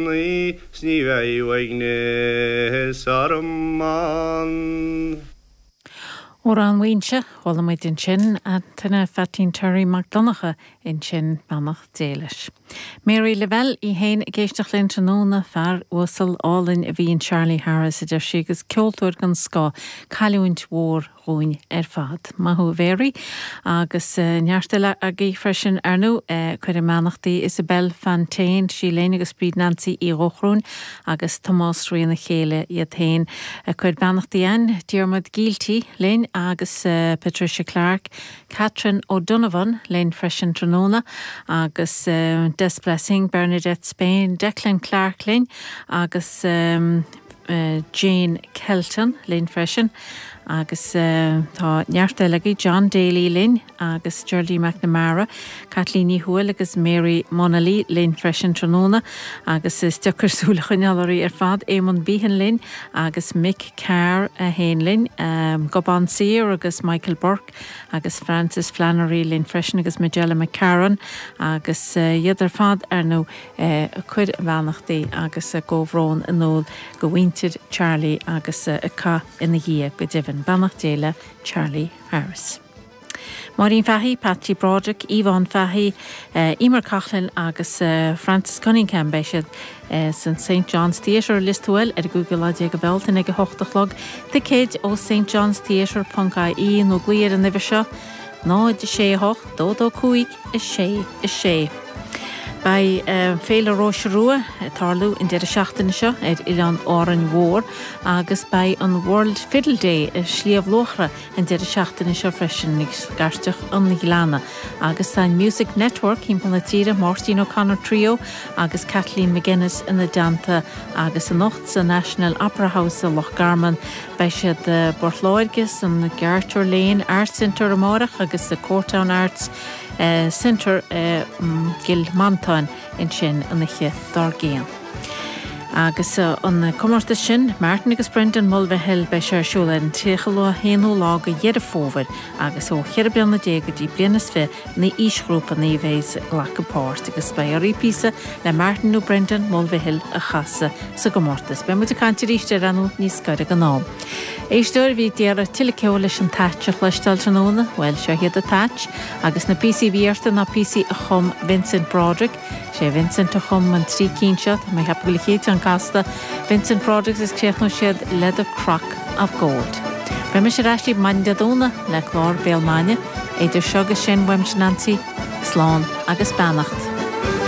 naí 's ní bheidh uaigneas orm ann. Amhrán Mhaínse, chuala muid ansin Antaine Pheaitín Terry Mac Donncha ansin, beannacht Dé leis. Mary Lavelle í fhéin ag éisteacht linn tráthnóna, fear uasal, álainn a bhí in Charlie Harris a deir sí agus ceoltóir den scoth, cailliúint mhór, dhúinn ar fad. Maith thú a Mhéaraí, agus neart eile agaibh freisin, ar ndú. Ag cur a mbeannachtaí Isabelle Fantain, sí linn agus Bríd Nansaí Uí Dhóchrúin agus Tomás Rí ina chéile iad féin. Ag cur a mbeannachtaí Anne, Diarmuid Gielty linn agus Patricia Clarke, Catherine O'Donovan linn freisin tráthnóna agus Des Blessing, Bernadette Spain, Declan Clarke linn agus. Jane Kelton linn freisin agus tá neart eile agaibh, John Daly linn agus Geraldine McNamara, Caitlín Ní Thuathail agus Mary Munnelly linn freisin tráthnóna agus is deacair súil a choinneáil oraibh ar fad, Éamonn Behan linn agus Mick Carr é fhéin linn, Gobán Saor agus Michael Burke agus Frances Flannery linn freisin agus Majella McCarron agus iad ar fad ar ndóigh. ag cur a mbeannachtaí agus a gcomhbhrón in iúl do mhuintir Charlie agus ag caitheamh ina dhiaidh, go deimhin. Beannacht Dé le Charlie Harris. Máirín Fahy, Patsy Broderick, Yvonne Fahy, Eimear Coughlan agus Francis Cunningham Beidh siad san St John's Theatre, Lios Tuathail, ar an gcúigiú lá déag de Bhealtaine ag a hocht a chlog. Ticéid ó stjohnstheatre.ie nó glaoigh ar an uimhir seo, 0, 6, 8, 2, 2, 5, 6, 6. Beidh Féile Róise Rua ag tarlú an deireadh seachtaine seo ar Oileán Árainn Mhór agus beidh an World Fiddle Day i Sliabh Luachra an deireadh seachtaine seo freisin i Scairteach an Ghleanna agus tá an Music Network thimpeall na tíre, Máirtín O'Connor Trio agus Kathleen MacInnes ina dteannta agus anocht sa National Opera House i Loch Garman Beidh siad i bPort Láirge, san Garter Lane Arts Centre amárach agus sa Courtown Arts Centre i gCill Mhantáin ansin an oíche dár gcionn. Agus an comórtas sin, Martin agus Brendan Mulvihill, beidh sé ar siúl ar an 31ú lá de Dheireadh Fómhair agus ó cheithre bliana déag go dtí bliain is fi an aoisghrúpa a bheas ag glacadh páirt agus beidh oraibh píosa le Martin nó Brendan Mulvihill a chasadh sa gcomórtas. Beidh muid ag caint arís air ar ndóigh níos gaire don am. Éisteoir, a bhí ag iarraidh tuilleadh ceoil leis an t-ait a chloisteáil tráthnóna, bhuel seo iad a t-ait, agus na píosaí a bhí orthu ná píosaí a chum Vincent Broderick, Is é Vincent a chum an trí cinn seo, tá mé ag ceapadh go le chéad cheann casta, Vincent Broderick's is chríochnaigh siad le The Crock of Gold. Beidh mise ar ais libh maidin Dé Domhnaigh le clár Béal Maidine. Idir seo agus sin, uaimse, Neansaí, slán agus beannacht.